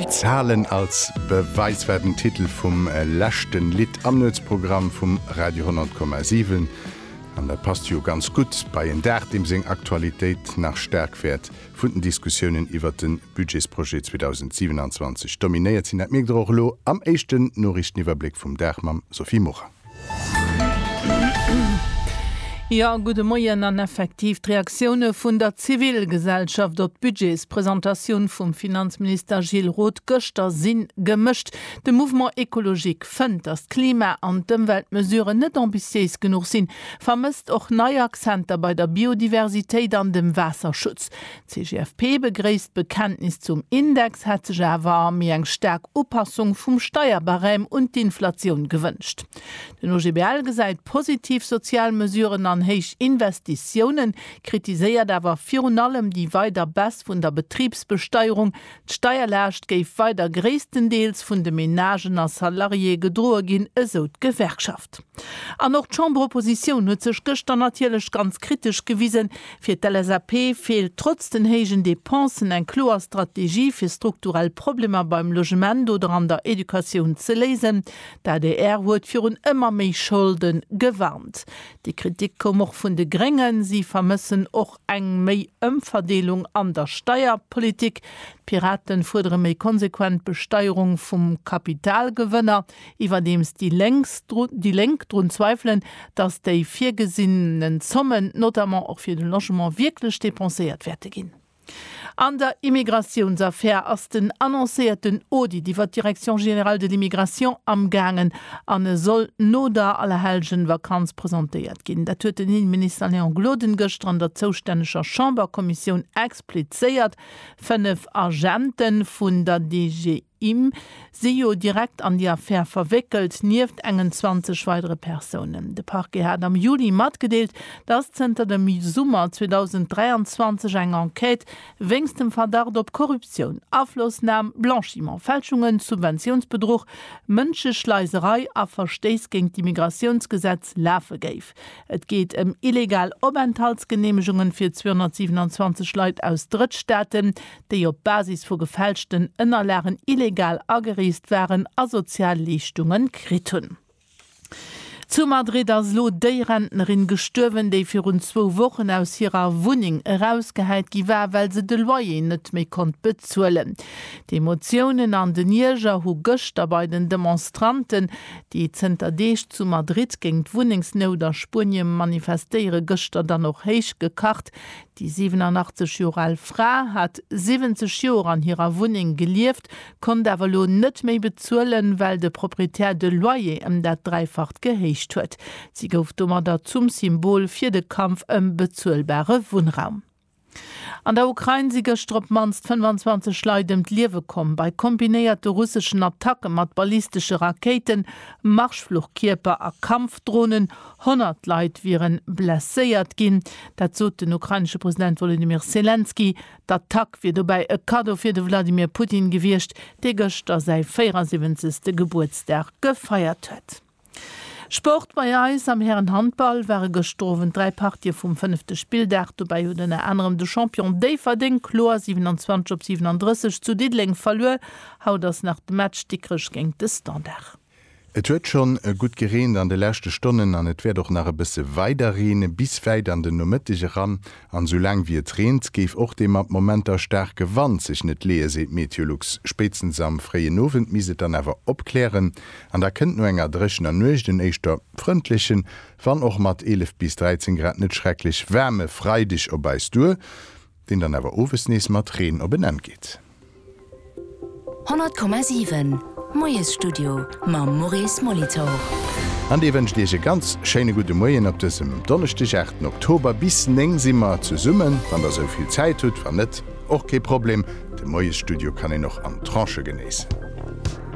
Zahlen als Beweis war den Titel vum leschten Lidd am Nuetsprogramm vum Radio 100,7. An dat passt jo ganz gutt bei en Dag, deem seng Aktualitéit nach staark wäert vun den Diskussiounen iwwert den Budgetsprojet 2027 dominéiert sinn. Dat mierkt der och elo am éischten Noriichteniwwerbléck vum Dag mam Sophie Morang. Jo, gudde Moien an effektiv d'Reaktioune vun der Zivilgesellschaft op d'Budgetspresentatioun vum Finanzminister Gilles Roth gëschter si gemëscht. De Mouvement Ecologique fënnt, datt d'Klima an d'Ëmweltmesuren net ambitiéis genuch sinn, vermësst och nei Akzenter bei der Biodiversitéit an dem Waasserschutz. D'CGFP begréisst d'Bekenntnis zum Index, hätt sech awer méi eng staark Upassung vum Steierbarème un d'Inflatioun gewënscht. Den OGBL gesäit positiv sozial Mesuren an héich Investitiounen, kritiséiert awer virun allem déi weider Baisse vun der Betribsbesteierung, D'Steierlaascht géif weider gréisstendeels vun de Menagen a Salariéë gedroe ginn, esou d'Gewerkschaft. An och d'Chamberoppositioun huet sech gëschter natierlech ganz kritesch gewisen. Fir d'LSAP feelt trotz den héijen Depensen eng kloer Strategie, fir strukturell Problemer beim Logement oder an der Educatioun ze léisen. D'adr huet virun ëmmer méi Scholde gewarnt. Déi Kritik koum och vun de Gréngen. Si vermëssen och Eng méi Ëmverdeelung an der Steierpolitik, D'Piraten fuerdere méi konsequent Besteierung vum Kapitalgewënner, iwwerdeems déi Lénks, déi Lénk drun zweifelen, datt déi virgesinnen Zommen, notamment och fir de Logement, wierklech depenséiert wäerte ginn. An der Immigratiounsaffär ass den annoncéierten Audit iwwer d'Direction générale de l'immigration amgaangen an e soll no der Allerhellgen-Vakanz presentéiert ginn. Dat huet den Inneminister Léon Gloden gëschter an der zoustänneger Chamberkommissioun explizéiert. Fënnef Agente vun der DGSI, Im si jo direkt an déi Affär verwéckelt, nieft engen 20 weidere Persounen. De Parquet hat am Juli matgedeelt, dass zënter dem Summer 2023 eng Enquête wéinst dem Verdacht op Korruptioun, Aflossnam, Blanchiment, Fälschungen, Subventiounsbedruch, Mënscheschleiserei a Verstéiss géint d'Immigratiounsgesetz lafe géif. Et geet ëm illegal Openthaltsgeneemegungen fir 227 Leit aus Drëttstaaten, déi op Basis vu gefälschten Ënnerlagen illegal agereest waren a sozial Leeschtunge kritt hunn. Zu Madrid ass elo déi Rentnerin gestuerwen, déi virun zwou Wochen aus hirer Wunneng erausgehäit gi war, well se de Loyer net méi konnt bezuelen. D'Emotiounen an den Ierger hu gëschter bei den Demonstranten, déi zënter Deeg zu Madrid géint d'Wunnengsnout a Spuenie manifestéieren, gëschter dann och héich gekacht. Déi 87 Joer al Fra hat 70 Joer an hirer Wunneng gelieft, konnt awer elo net méi bezuelen, well de Proprietär de Loyer ëm dat Dräifacht gehéicht huet. Si gouf domadder zum Symbol fir de Kampf ëm bezuelbare Wunnraum. An der Ukrain si gëschter op d'mannst 25 Leit ëm d'Liewe komm, bei kombinéierte russeschen Attacke mat ballistesche Rakéiten, Marschfluchkierper a Kampfdronen 100 Leit wiere blesséiert ginn, dat sot den ukrainesche President Wolodymyr Selenskyj. D'Attack wier dobäi e Kaddo fir de Wladimir Putin gewiescht, dee gëschter säi 74. Gebuertsdag gefeiert huet. Sport bei eis, Am Hären-Handball ware gëschter Owend dräi Partië vum fënnefte Spilldag. Dobäi huet ënner anerem de Champion Déifferdeng kloer 27 op 37 zu Diddeleng verluer. Haut ass nach de Match Dikrech géint de Standard. Et huet schonn e gutt gereent an de leschte Stonnen an et wäert och nach e bësse weider reene bis wäit an den Nomëtteg eran. An esou laang wéi et reent, géif och dee mat Momenter staarke Wand sech net leeë, seet Meteolux. Spéitstens am fréien Owend misst et dann awer opklären an da kënnt no enger dréchener Nuecht en éischter frëndlechen, wann och mat 11 bis 13 Grad net schrecklech waarme Freideg op eis duer. deen dann awer owes nees mat Reen op en Enn geet. 100,7 Moiesstudio mam Maurice Molitor. An dee wënscht Iech e ganz schéine gudde Moien op dësem Donneschdeg, 8 Oktober. Bis 9 si mer zesummen, wann Der esou vill Zäit hutt. Wann net, och kee Problem, de Moiesstudio kann een och an Tranchë genéissen.